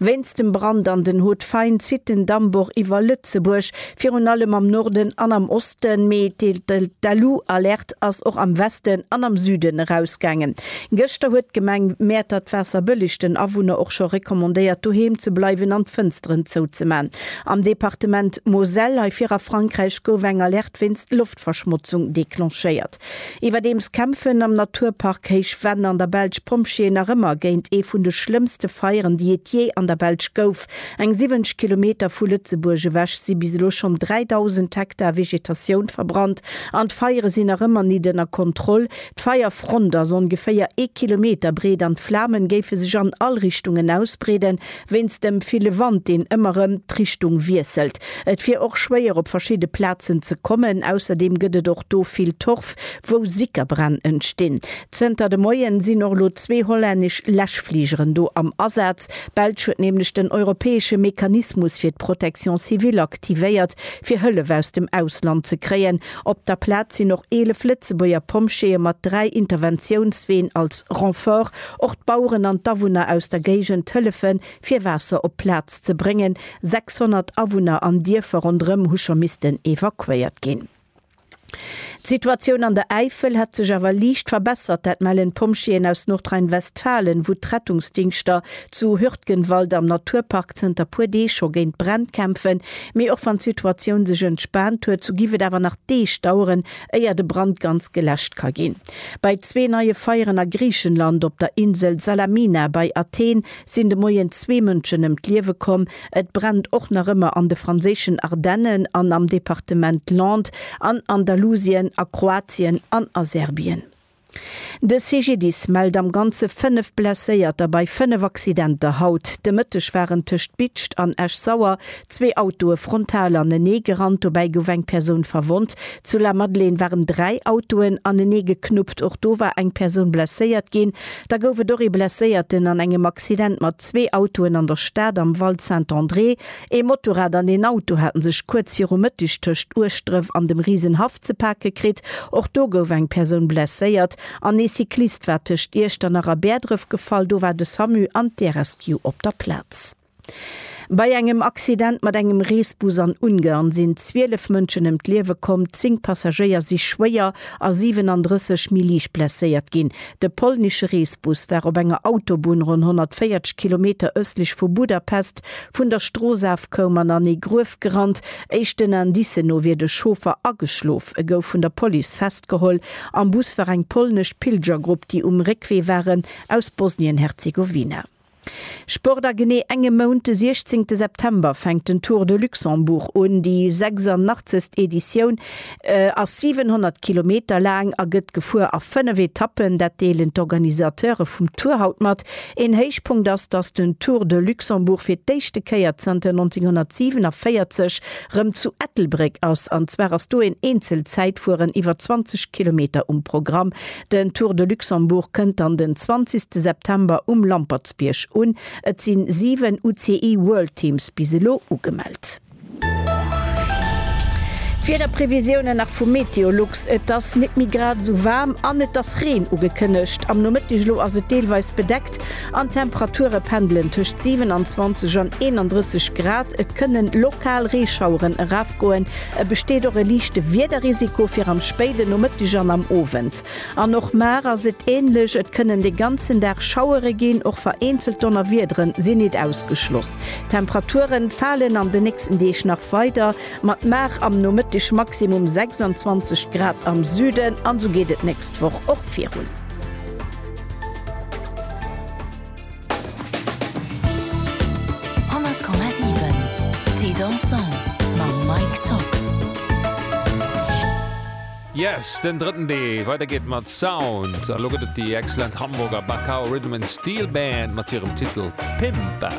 Wéinst dem Brand an den Haute Faine zitt den Dammbor iwwer Lëtzebuerg, virun allem am Norden an am Osten, mee d'Alu-Alerte ass och am Westen an am Süden erausgaangen. Gëschter huet d'Gemeng Mäertert d'Waasserbëlleg den Awunner och scho recommandéiert doheem ze bleiwen an d'Fënsteren zouzemaachen. Am Departement Moselle, hei vir a Frankräich, gouf eng Alerte wéinst Loftverschmotzung d'Verschmotzung declenchéiert. Iwwerdeems kämpfen am Naturpark Héich Venn an der Belsch Pompjeeën nach ëmmer géint ee vun de schlëmmste Feieren, déi et jee an der Belsch gouf. Eng 70 Kilometer vu Lëtzebuerg ewech si bis elo schonn 3.000 Hektar Vegetatioun verbrannt an d'Feiere sinn nach ëmmer nit ënner Kontroll. D'Feierfront ass ongeféier ee Kilometer breet an d'Flamen géife sech an all Richtungen ausbreeden, Wéinst dem ville Wand, deen ëmmer rëm d'Richtung wiesselt. Et wier och schwéier op verschidde Plazen ze kommen. Ausserdeem gëtt et och do vill Torf, wou Sickerbränn entstinn. Zënter de Moien sinn och elo zwee hollännesch Läschfligeren do am Asaz. D'Belsch huet nämlech den europäesche Mechanismus fir d'Protection civile aktivéiert, fir Hëllef aus dem Ausland ze kréien. Op der Plaz sinn och 11 Lëtzebuerger Pompjeeë mat dräi Interventiounsween als Renfort. Och d'Baueren an d'Awunner aus der Géigend hëllefe fir Waasser op d'Plaz ze bréngen. 600 Awunner an Dierfer ronderëm hu scho missten evakuéiert ginn. D'Situatioun an der Äifel hätt sech awer liicht verbessert, dat mellen d'Pompjeeën aus Nordrhein-Westfalen, wou d'Rettungsdingschter zu Hürtgenwald am Naturpark zënter puer Deeg scho géint d'Bränn kämpfen. Mee och wann d'Situatioun sech entspaant huet, sou géif et awer nach Deeg daueren, éier de Brand ganz geläscht ka ginn. Bei zwee neie Feieren a Griichenland, op der Insel Salamina bei Athen, sinn de Moien zwee Mënschen ëm d'Liewe komm. Et brennt och nach ëmmer an de franséischen Ardennen an am Departement Landes, an Andalusien, a Kroatien an a Serbien. De CGDIS mellt am Ganze 5 Blesséierter bei 5 Accidenter. Haut de Mëtteg waren tëscht Bitscht an Esch-Sauer zwee Autoe frontal anenee gerannt. Dobäi gouf eng Persoun verwonnt. Zu Lamadelaine waren dräi Autoen anenee geknuppt. Och do war eng Persoun blesséiert ginn. Da gouf et och ee Blesséierten an engem Accident mat zwee Autoen an der Stad am Val Saint-André. Ee Motorrad an een Auto hate sech kuerz viru Mëtteg tëscht Ueschdref an dem Riesenhaff ze pake kritt. Och do gouf eng Persoun blesséiert an ee Cyclist war tëscht Iechternach a Bäerdref gefall. Do war de Samu an d'Air-Rescue op der Plaz. Bei engem Accident mat engem Reesbus an Ungarn sinn 12 Mënschen ëm d'Liewe komm, 10 Passagéier si schwéier a 37 méi liicht blesséiert ginn. De polnesche Reesbus war op enger Autobunn ronn 140 Kilometer ëstlech vu Budapest Vun der Strooss af koum an an ee Gruef gerannt. Éischten Indicen no wier de Chauffer ageschlof. E gouf vun der Police festgeholl. Am Bus war eng polnesch Pilgergrupp, déi um Réckwee waren aus Bosnien-Herzegowina. Sport A genee engem Mount, de 16 September, fänkt den Tour de Luxembourg un, déi 86. Editioun. ass 700 Kilometer laang a gëtt gefuer a fënnef Etappen. Dat deelen d'Organisateure vum Tour haut mat. Een Héichpunkt ass, datt den Tour de Luxembourg fir d'éischte Kéier zanter 1947 rëm zu Ettelbréck ass. An zwar ass do een Eenzelzäitfueren iwwer 20 Kilometer um Programm. Den Tour de Luxembourg kënnt dann den 20 September um Lampertsbierg un. Et si 7 UCI World Teams bis elo ugemellt. D'Wiederprevisiounen nach vu Meteolux, Et ass nit méi grad esou waarm an et ass Reen ugekënnegt. Am Nomëtteg elo ass et deelweis bedeckt an d'Temperature pendelen tëscht 27 an 31 Grad. Et kënne lokal Reeschaueren erafgoen. E besteet och e liichte Wiederrisiko fir am spéiden Nomëtteg an am Owend. An och mar ass et änlech, et kënnen de ganzen Dag Schauere ginn, och vereenzelt Donnerwiedere sinn nit ausgeschloss. D'Temperature falen an de nächsten Deeg nach weider, mat mar am Nomëtteg Maximum 26 Grad am Süden, an esou geet et d'nächst Woch och virun. Yes, den drëtten Deel. Weider geet mat Sound. A lo gëtt et déi excellent Hamburger Bacao Rhythm and Steel Band mat hirem Titel Pimpa.